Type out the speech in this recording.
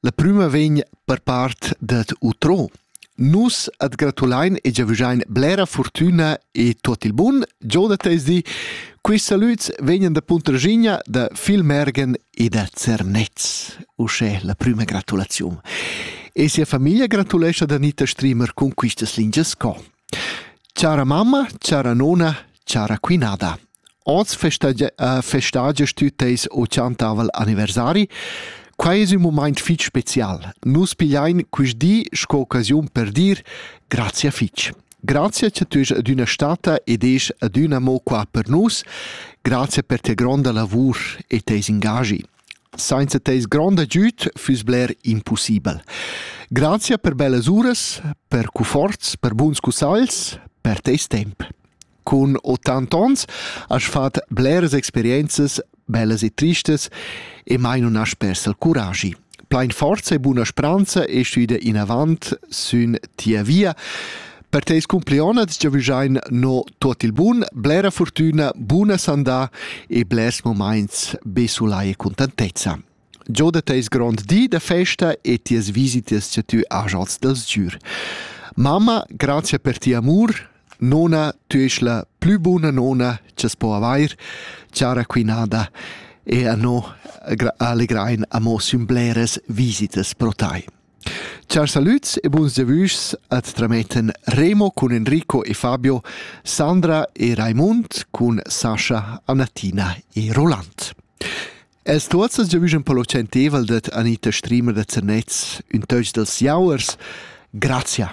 La prüma vegn per part dad Utrò. Nus at gratulain e giavüschain blera furtüna e tuot il bun. Giò da tesdi, quists salüds vegnan da Puntraschigna, da Filmergen e da Zernez. Uschè la prüma gratulaziun. E sia famiglia gratulescha da Anita Strimer cun quistas lingias co. Cara mamma, cara nona, cara quinada. Hoz festagia, festagia stü teis ochantavel anniversari. Quai es ün mumaint fich special. Nus pigliain quist di sco occasiun per dir grazia fich. Grazia cha tü esi adüna stata ed esi adüna mo qua per nus. Grazia per tia gronda lavur e teis ingagi. Sainza teis grond agüd füss bler impussibel. Grazia per bellas uras, per cuforts, per buns cussagls, per teis temp. Cun ottant ons as fat bleras experienzas bellas e tristas e mai nun as persa il curagi. Plain forza e buna spranza e stüda inavant sün tia via. Per teis cumplionats giavüschain no tuot il bun, blera fortüna, buna sandà e blers momaints be sulai e cuntantezza. Giò da teis grond di da festa e tias visitas cha tü hajast da sgür. Mamma, grazia per tia amur. Nona, tü esch la plü buna nona cha's po avair, chara quinada, e a no allegrain amo sün bleras visitas pro tai. Chars salüds e buns devüschs at trametten Remo cun Enrico e Fabio, Sandra e Raimund cun Sascha, Annatina e Roland. Els tuot ses giavüschan per lur tschentievel dad Anita Strimer da Zernez, ün töch dals jauers. Grazia!